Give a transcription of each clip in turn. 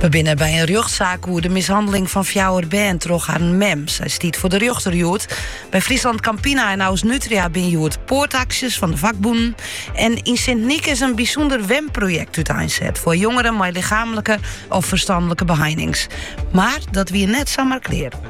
We binne by in rjochtsaak oer de mishanneling fan fjouwer bern troch harren mem. Sy stiet foar de rjochter hjoed. By Friesland Campina en Ausnutria bin hjoed poartaksjes fan de fakbûnen. En yn Sint-Nyk is in bysûnder wenprojekt úteinset foar jongeren mei lichamlike of ferstanlike beheinings. Mar dat wie net samar klear.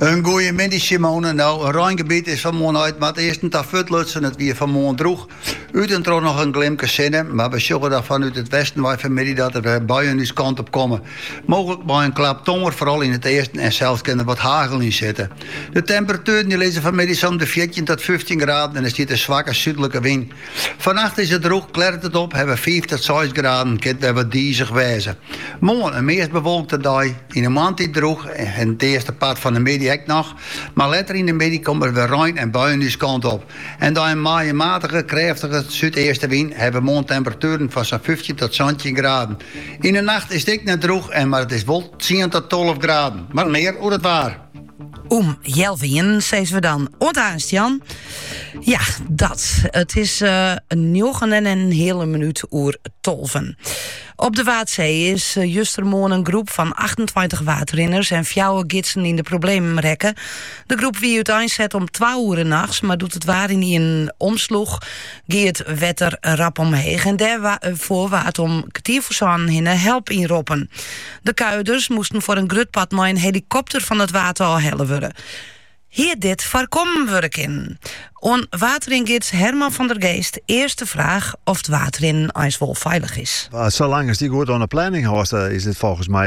In goeie middei Simone. No, in reingebiet is fan 'e moarn út nei it easten ta fuortlutsen. It wie fan 'e moarn droech. Ut en troch noch in glimke sinne, mar we sjogge dan fanút it westen wei fanmiddei dat der wer buien ús kant op komme. Mooglik mei in klap tonger, foaral yn it easten en sels kin der wat hagel yn sitte. De temperatueren die lizze fanmiddei sa om de fjirtjin tot fyftjin graden en der stiet in swakke súdlike wyn. Fannacht is it droech, klearret it op, hawwe we fiif tot seis graden, kin it wer wat dizich wêze. Moarn, in meast bewolkte dei. Yn 'e moarntiid droech en it earste part fan 'e middei ek noch, mar letter yn 'e middei komt der wer rein en buien ús kant op. En by in, mei in matige, krêftige súdeastewyn hawwe we moarn temperatueren fan sa'n fyftjin tot santjin graden. Yn 'e nacht is it ek net droech en mar it is wol tsien tot tolve graden. Mar mear oer it waar. Om healwei ienen sizze we dan oant aanst, Jan. Ja, dat. It is njoggen en in hiele minút oer tolven. Op de Waadsee is eh, justermoarn in groep fan 28 waadrinners en fjouwer gidsen yn de problemen rekke. De groep wie úteinset om twa oere nachts, mar doe't it waar ynienen omsloech, gie it wetter rap omheech. En dêrfoar eh, waard om kertier foar sânen hinne help ynroppen. De kuierders moasten foar in grut part mei in helikopter fan it Waad ôf helle wurde. Hie dit foarkommen wurde kinnen? Oan waadringids Herman van der Geest earst de fraach oft waadrinnen eins wol feilich is. Sa lang ast dy goed oan 'e planning hâldst, is dit folgens my